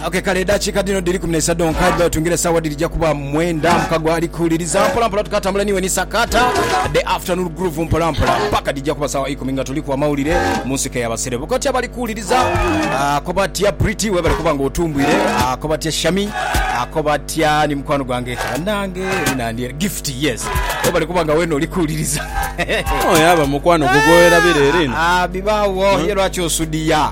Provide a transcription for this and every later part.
Okay, kale edakika dhino dhiri kumi n'isa dhonka dhiba otungira esawa dhirija kuba mwenda mukago ali kuwuliriza mpolampola tukatambula niwe ni sakata the afternoon groove mpolampola paka dhija kuba sawa ikumi nga tuliku amawulire mu nsiko eyabaserebu koti abali kuwuliriza ako batya pretty webale kuba nga otumbwire ako batya shami ako batya ni mukwano gwange nange nandye gift yes webale kuba nga wena oli kuwuliriza oyo aba mukwano gugwowerabira erino Ah, bibaawo ye lwaki osudiya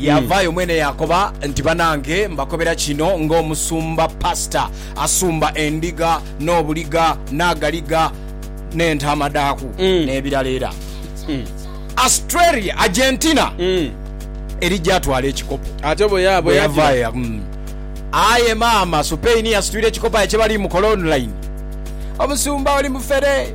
Yaavaayo mwene yaakoba nti, Banange, mbakobera kino ng'omusumba, pastor, asumba endiga n'obuliga n'agaliga n'entaama dhaaku n'ebirala era Australia, Argentina, eri gy'atwala ekikopo. Bwe yavaayo ya. Aye maama Supain yasitwire ekikopo aye kye bali mu kola online. Omusumba oli mufere.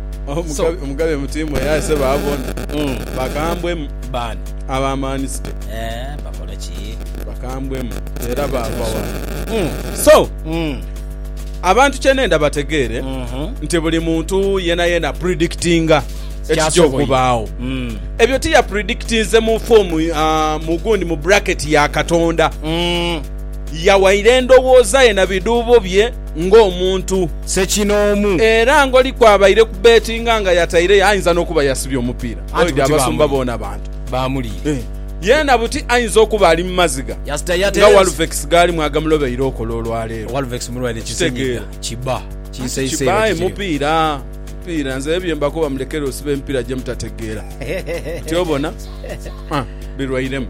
Omugabe mutimu era aise baabona bakambwemu. Baani? Abamanisite. Eeh, bakole ki? Bakambwemu era baava wano. So, abantu kye nenda bategeere nti buli muntu yenayena predictinga ekija okubaagho. Ebyo tiyapredictinze mu form, mu gundi, mu bracket ya Katonda. Yawaire ndhowooza ye na bidhuubo bye. ng'omuntu. Ssekinoomu. Era ng'oliku abaire ku beetinga nga yataireyo, ainza n'okuba yasibye omupiira. Anti buti Abasumba boona bantu. Baamuliira. Yeena buti ainza okuba ali mu maziga nga Walvex gaalimu agamulobeire okola olwaleero. Walvex mulwaire kisenyiga. Kiba. Kinseiseire kityo. Kiba aye mupiira. Mupiira. Nze bye mbakoba mulekere osiba emipiira gye mutategeera. Tyo bona. Birwairemu.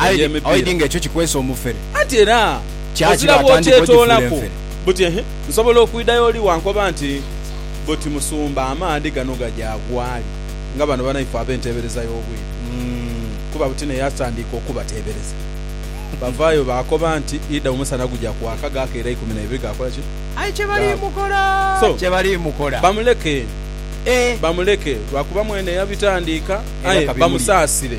Aye di, aye di nga ekyo kikwesa omufere. Anti era Kya ozira kino atandika ogifuula bw'okyetoolaku enfere. buti, ehe, nsobola okwidha y'oli wankoba nti, Buti Musumba, amaadhi gano gaja ghwali nga bano banaife ab'enteebereza y'obwiru. Kuba buti naye atandika okubateebereza. Bavaayo baakoba nti, Idha omusana guja kwaka, gaakeera ikumi na ibiri gaakola ki? Aye kye baliimukola, So, kye baliimukola. bamuleke, Eh! bamuleke, lwakuba mwene yabitandiika. Era Aye ka bimulye. bamusaasire.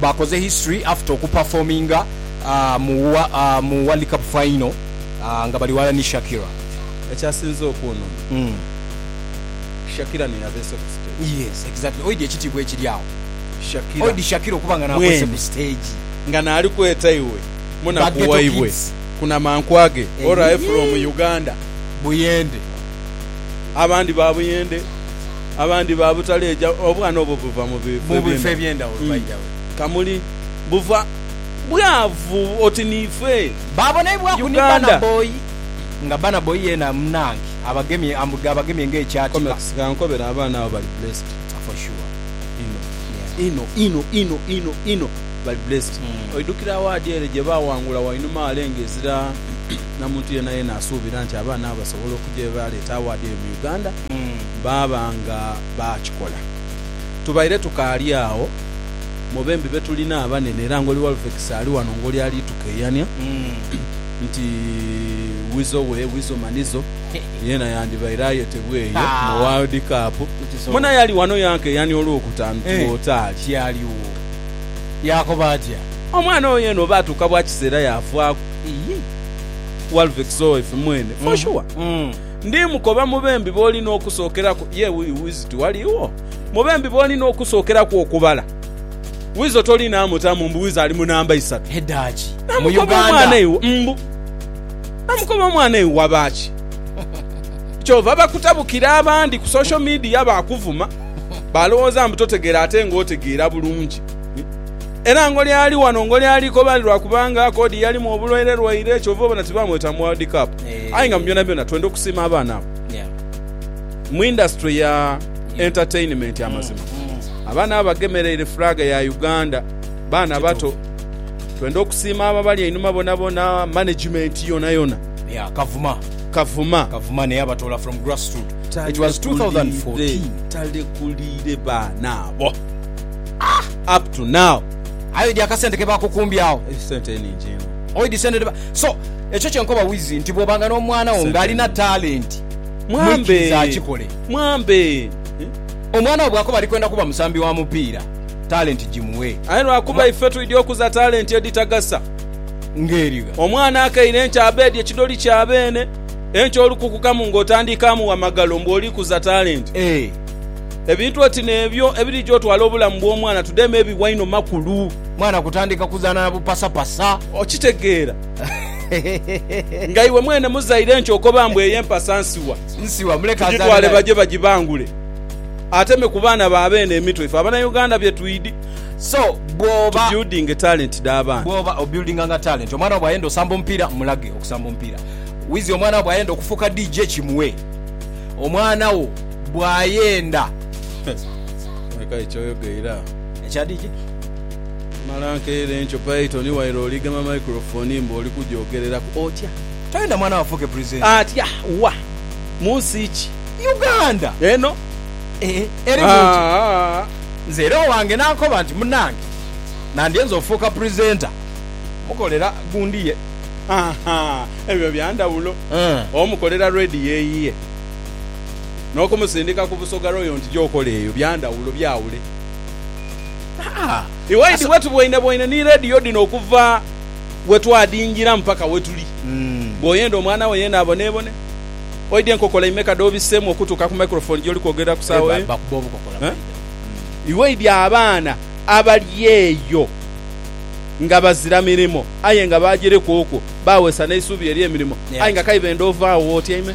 bakoze history after oku performinga mu World Cup final nga bali ghala ni Shakira. Ekyasinze okunuma, Shakira niyabeese ku stage. Yes exactly oidhi ekitiibwa ekiri agho. Shakira mwene nga naali kweta iwe munaku waibwe ku namankwa ge or aye from Uganda. Buyende. Abandi ba buyende. abandi ba butaleja obwana obwo buva mu bifo eby'endhaghulo, by the way. Kamuli, buva bwavu oti niife. Baabonaibwaku ni Burna Boy, nga Burna Boy yeena munnange abagemye, ambwe abagemye ng'ekyatiba. Comex, ka nkobere, abaana abo bali blessed. For sure. Inho, inho, inho, inho, inho, inho. Bali blessed. Oidhukira awaadi ere gye baawangula wainuma wale ng'ezira na muntu yeenayeena asuubira nti abaana abo basobola okuja ye baleeta awaadi eyo mu Uganda? baaba nga baakikola. Tubaire tukaali agho mu bembi be tulina abanene era ng'oli Walvekisi ali ghano ng'oli ali tukeeyania nti Weasel we Weasel Manizo yeena yandibaire ayetebwa eyo mu World Cup. Mune aye ali ghano yankeeyania olw'okutaanu ti w'otaali. Tialigho. Yaakoba atya? Omwana oyo yeena oba atuuka bwa kiseera yaavaaku Walvekisi owo ife mwene for sure. Ndi mukoba mu bembi b'oli n'okusookeraku, ye Wizo tiwaliwo? Mu bembi b'oli n'okusookeraku okubala, Wizo tolinaamutamu mbu Wizo ali mu namba isatu? Edaaki mu Uganda. Mbu namukoba omwana iwe waba ki? Kyova bakutabukira abandi ku social media baakuvuma, baalowooza mbu totegeera ate ng'otegeera bulungi. Era ngoli ali wano ngoli ali kobali lwakubanga Akodi yalimu obulwairelwaire kyova obona tibaamweta mu World Cup. Aye nga mu byonabyona twenda okusiima abaana abo. Mu industry ya entertainment amazima abaana abo bagemereire flag ya Uganda. Baana bato. Twenda okusiima abo abali einhuma bonabona, management yonayona. Yeah, Kavuma. Kavuma. Kavuma ne yabatoola from grassroot. It was 2014. Talekuliire baana abo up to now. Aye odi akasente ke bakukumbye agho. Esente eningi inho. So, ekyo kye nkoba Wizzy nti bw'oba nga n'omwana wo ng'alina talenti, mwikirize akikole. Omwana wo bw'akoba ali kwenda kuba musambi wa mupiira, talenti gimuwe. Aye lwa kuba ife twidhi okuza talenti edhitagasa. Ngeri gha? Omwana akaire enkya abeedi ekidoli kya beene, enkya olukukukamu ng'otandiika amugha magalo mbu oli kuza talenti. Ebintu oti n'ebyo ebirija otwala obulamu bw'omwana tudheeme biwa inho makulu. Mwana kutandika kuzaana na bupasapasa. Okitegeera nga iwe mwene muzaire nti okoba mbu eyo empasa nsiwa, tugitwale baje bagibangule ate me ku baana ba beene emitwe ife Abanauganda bye twidi. So bw'oba. Tubuildinge talenti dha baana. Bw'oba obuildinganga talenti, omwana wo bw'ayenda osamba omupiira mulage okusamba omupiira. Wizi omwana wo bw'ayenda okufuuka DJ kimuwe omwana wo. bw'ayenda. Aye kale kyoyoga era. Ekya DJ. Mala nkeire nkyo Python waire oligema microphone mbu oli kugyogereraku. Otya? Toyenda mwana wo afuuke presenter. Atya? Wa? Mu nsi ki? Uganda! Eno? Ee. Erimu ki? Haa. Nze era owange n'ankoba nti, Munange, nandyenze ofuuka presenter. Mukolera gundi ye. Haa ebyo bya ndhawulo. Omukolera radio eyiye. n'okumusindika ku busoga royo nti gy'okola eyo bya ndhawulo, byawule. Haa! Iwaidi wetubwoinebwoine ni leediyo dhino okuva we twadhingira mpaka we tuli. Bw'oyenda omwana wo yeena aboneebone, oidhe nkokola imeka dh'obisseemu okutuuka ku microphone gy'oli kwogerera ku saagho eyo? Iwaidi abaana abali eyo nga bazira mirimo aye nga baagireku okwo, baawesa n'eisuubi ery'emirimo, aye nga k'aidha enda ove agho w'otyaime.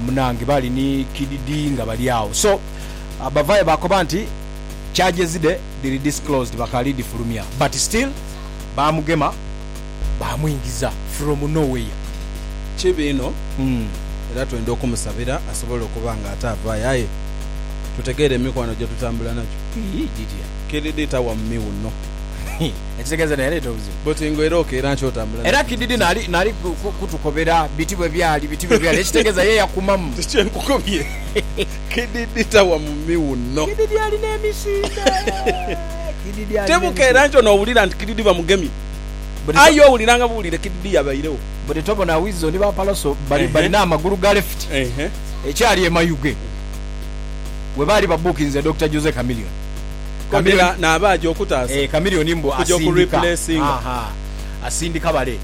munange bali ni kid Dee nga bali agho so bavayo bakoba nti charges dhe dhiri disclosed bakali dhifulumya but still bamugema bamwingiza from no where. Kibi inho era twenda okumusabira asobole okuba nga ate avaayo aye tutegeere emikwano gye tutambula nagyo. Kid Dee tawa mu miwunho. Ekitegeeza nti yaleeta obuzibu. But nga era okeera nkya otambula nakyo. Era kididi nali kutukobera biti bwebyali biti bwebyali ekitegeeza ye yakumamu. Nti kyenkukobye kididi tawa mu miwuno. Kididi alina emisinde kididi alina emisinde. Tebukeera nkya nowulira nti kididi bamugemye. Aye owulira nga buwulire kididi yabairegho. Buli tobona Wizzo ni ba Pallaso balina amagulu ga left ekyali e Mayuge webaali babukinze Dokita Jose Chameleon. Camilla naaba aja okutaasa okuja okureplacinga. Asindika bale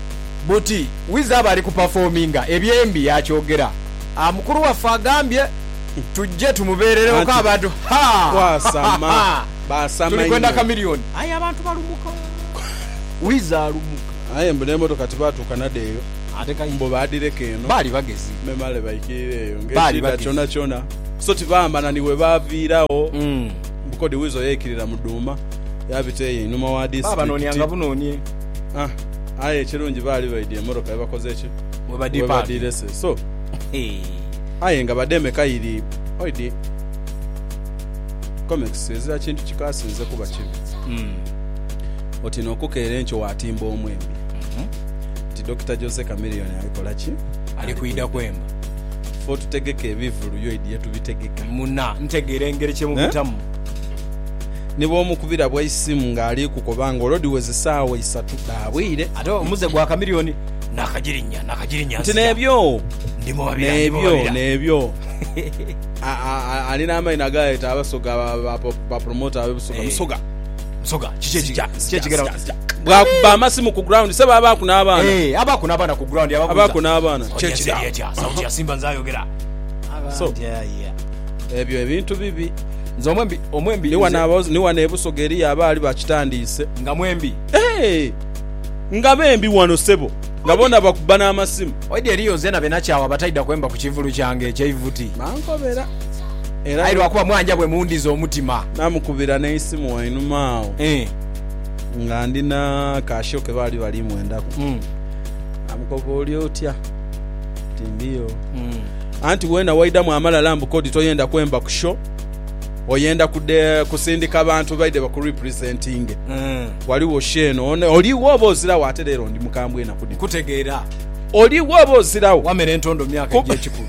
buti wiza aba ali kuperforminga ebyembi yakyogera a mukulu waffe agambye tujje tumubeerereko abantu haa tuli kwenda Chameleon aye abantu balumuka wiza alumuka. Aye mbu n'emotoka tibaatuuka nadho eyo mbu baadhireka eno memale baikirire eyo ng'ekiidha kyonakyona. So ti baambana ni bwe baaviiragho mbu kodi Weasel yeikirira mu dhuuma yaabita eyo einhuma wa disitulikiti. Aye ekirungi baali baidhi emotoka ye bakoze ki? We badhiirese. So aye nga bademe kairi oidhi komekisi ezira kintu kikaasinze kuba kibi. Oti n'okukeera enkyo waatimba omwembi nti Dokita Jose Chameleone ali kola ki? Ali kwidha kwemba. Fe otutegeka ebivulu, yo idi ye tubitegeka. Muna ntegeera engeri kye mubitamu? Ni bw'omukubira bwa isimu ng'ali kukoba nga olwo dhiweza esaawa isatu dha bwire. Ate omuze gwa kamilioni nakagirinya nakagirinya nzija. Nti n'ebyo, Ndi mu babira, ndi mu n'ebyo, babira. n'ebyo. A, a, a, ali n'amaino agaayeta Abasoga, ba, ba, ba, ba promoter ab'e Busoga. Eh. Musoga. Nsoga kiki ekija kiki ekigenda mu kija. Bwa kubba amasimu ku ground sebo abaaku n'abaana. Eeh abaaku n'abaana ku ground ababuuza. Abaaku n'abaana kiki ekija. Oja eseeri etya sauti ya simba nze ayogera. So ebyo ebintu bibi. Nze omwembi omwembi ni wano aba ni wano e Busoga eriyo abaali bakitandiise. Nga mwembi. Eeh nga bembi wano sebo nga boona bakubba n'amasimu. Oidhi eriyo nzena be nakyawa abataidha kwemba ku kivulu kyange ekye ivuti. Bankobera. Aye lwa kuba mwanja bwe mundhiza omutima. Naamukubira n'eisimu wainuma agho nga ndi na ka show ke baali bali mwendaku. Naamukoba oli otya? Nti ndiyo. Anti weena waidhamu amalala mbu kodi toyenda kwemba ku show, oyenda kusindika bantu baidhe bakurepresentinge. Ghaligho show eno. Oligho oba oziragho? Ate leero ndi mukambwe enaku dhino. Nkutegeera. Oligho oba oziragho? Wamera entondo myaka egy'ekikulu.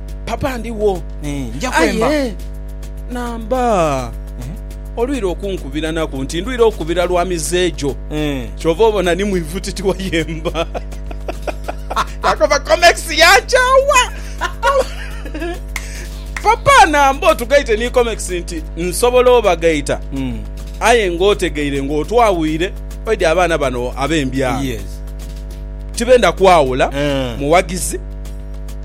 Papa ndigho. Aye namba olwira okunkubira naku nti ndwire okukubira lwa mize gyo. Kyova obona ni mwivutiti wayemba. Kakoba comex yankyawa. Papa namba otugaite ni comex nti nsobola obagaita aye nga otegeire nga otwawuire oidhi abaana bano abembyalo tibenda kwawula muwagizi.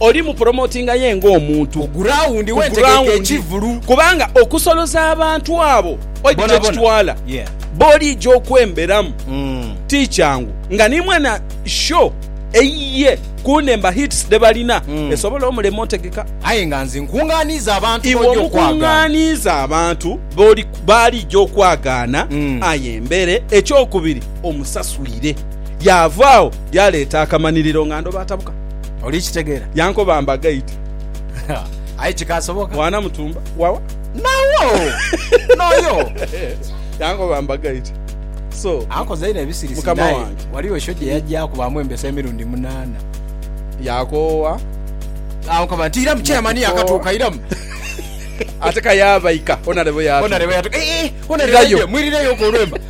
oli mupromotinga ye ng'omuntu ku gurawundi ku gurawundi kubanga okusoloza abantu abo oidhi kyekitwala boligya okwemberamu mm. ti kyangu nga ni mwana sho eyiye kunemba hits dhebalina mm. esobola omulema otegeka aye nga nze nkunganiiza abantu iwe omukunganiiza abantu baligya okwagaana mm. aye mbere ekyokubiri omusaswire yavaawo Yaaleeta akamaniriro nga ndhoba atabuka. Oli kitegeera? Yankoba mba gaidi. Aye kikaasoboka? Mwana mutumba wawa? Nawo! N'oyo! Yankoba mba gaidi. So, Ankoza inho ebisirisi. Mukama Naye wange. ghaligho show gye yajja akubaamu embesa emirundi munaana. Yakoowa. Ankoba nti, Iramu, Chairman yaakatuuka, iramu. Ate ka yaabaika, Honourable yaatuuka. Honourable yaatuuka. Eeh, Honourable Irayo. aidye, mwirireyoku olwemba.